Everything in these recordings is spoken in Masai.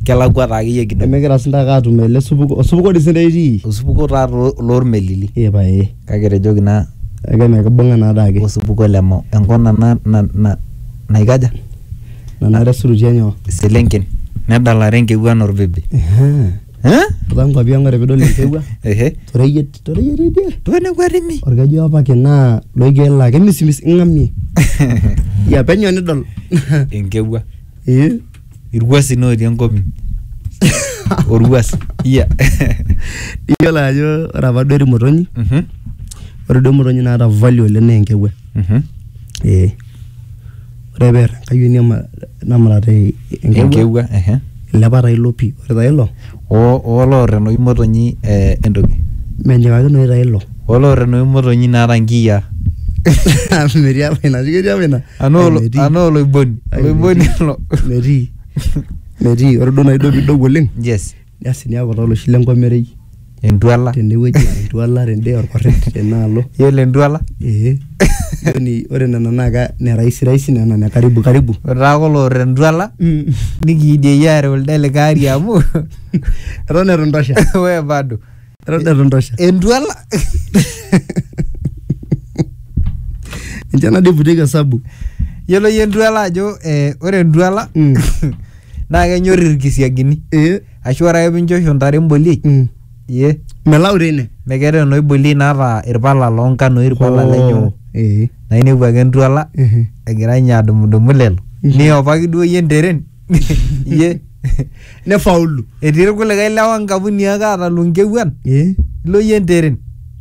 kelakwa taa akeyie kidogo. Nemigira sii ntake atum ele supuko, osupuko dii sii ntae itii? Osupuko taa loo loormelili Ee pae. kake etejoki naa Kake mikibung'a naa adake. osupuko le Mau. Enkop na na na naikaja? Nanare esurutua nyoo? Iselenken nedalare enkewuan olbibi. Ehaa. Eeh? Too nkuapi ang ore piidol enkewua Ehe. to reyiet, to reyiet tidie. Too nekua timi. Olkeju opaki naa loiger laa kemisimis ing'amie. Iyia penyo nidol. Enkewua. Ee. irwuasin otii enkop inyi orwuas iya iyiolo ajo ore apa duo irmotonyi Mhm, ore duo imotonyi naata value oleng naa enkewuan mhm. ee ore peer enkayioni ema- namurat e- enkewuan enkewua ehe. ilepa taa ilo pii ore taa ilo O oo loor enoshi motonyi entoki. Menyikakinoyu taa ilo. O loor enoshi motonyi naata inkiyia. Metii apa ina. Ketii apa ina? Anaa oloiboni. Oloiboni ilo. Metii. Metii. Ore duo nai duo pidou oleng. Yes. Asi niaku taa oloshi lenkomerei. Entuala. Tenewueji entuala tede orkordet tenaalo. Yiolo entuala? Ee. Yaani ore nena naa ka ne rahisi rahisi nena ne karibu karibu. Ore taa kulo oota entwala nikiidieyie aareu lido likae ari amu Eton itu intosha. we bado. Eton itu intosha. Entwala. Ninche nadi iputieki osabu. Yiolo iyie entwala ajo eh ore entwala Mm. naa kenyorr irkisiagini. Eh? Ashu ore ake pinchosho ntare emboliei, Mm. ye, melau teine mekeeta eno iboliei naata irpala loo nkanoi, irpala lenyo. Eh. Na inepu ake entuala, Mhm. egira ninye adumudumu lelo. Mhm. Niopaki duo yie enteren, ye. nefaulu Etii irkulikae lewa nkapuni ake aata lunkewuan, Eh. ilo yie enteren.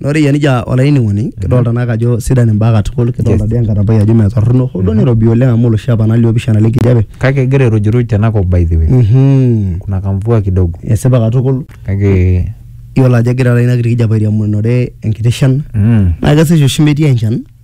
Na ore yie nija olainining'oni, kidolta naake ajo sidan imbaa katukul, kidolta di enkatampai ajo metorrono, ho duo nirobi oleng amu oloshi apa na liopishana lenkijape. Kake egira airujuruj tenakop by the way. Mhm. Kuna kamvua kidogo. Esipa katukul. Kake. Yiolo ajo egira taata inakiti kijape airiamunore enkiti shan. Na kesesh oshi metii enchan.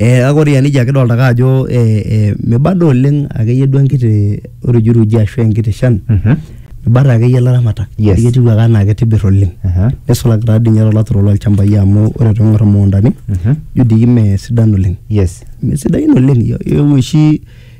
Ee kake ore iyanijia kidolta ake ajo ee miba dii oleng' ake yie duo enkiti urujuruji ashu enkiti shan ibata ake yie ilaramatak Yes. ajo ketiu ake enaa kitibir oleng'. Aha. Nisulaki taa dii nye to laturok loolchambai amu ore piing'or imukundani ijo dii mee sidan oleng'. Yes. Mee sidain oleng' ee ore oshi..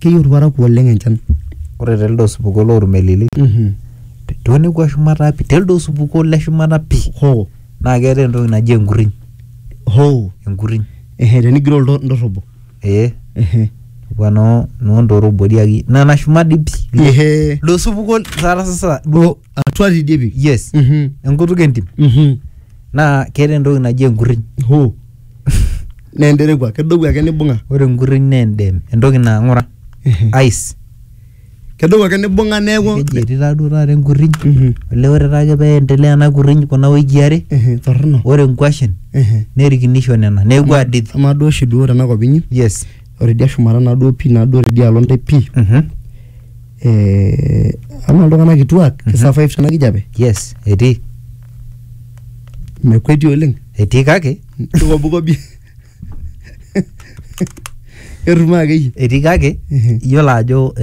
keyieu irparakuo oleng enchan ore telde osupuko lormelili tonekua shumata pi telde osupuko le shumata pi hoo naa keetae entoki naji enkuriny hoo enkuriny ehe tenigiroo ilto- indorrobo ee ehe kwa noo noondorobo diaki nana shumat dii pi ehe ilo osupuko taata sasa duo atua tidie pi yes Mhm. enkutuk entim Mhm. naa keetae entoki naji enkuriny hoo naa enterewua kedou ake nibung'a Ore enkurriny naa endem, entoki naa ng'ura, ice. kedou ake nibung'a neeku Keji etii taa duo taata enkurriny. Mhm. Olee ore taa ake pee endelea ena kurriny kuna wikii are, Ehe, torrono ore inkuashen Ehe. nerikinisho nena neeku adid. amaa duo oshi duo tena kop inyi Yes. ore idia shumata naa duo pii naa duo tidialo intae pii Mhm. eh, amaa iltung'anak kituak ki survive tena kijape Yes, etii. mekweti oleng etii kake kikobukobi etum akeyie etii kake iyiolo ajo eh,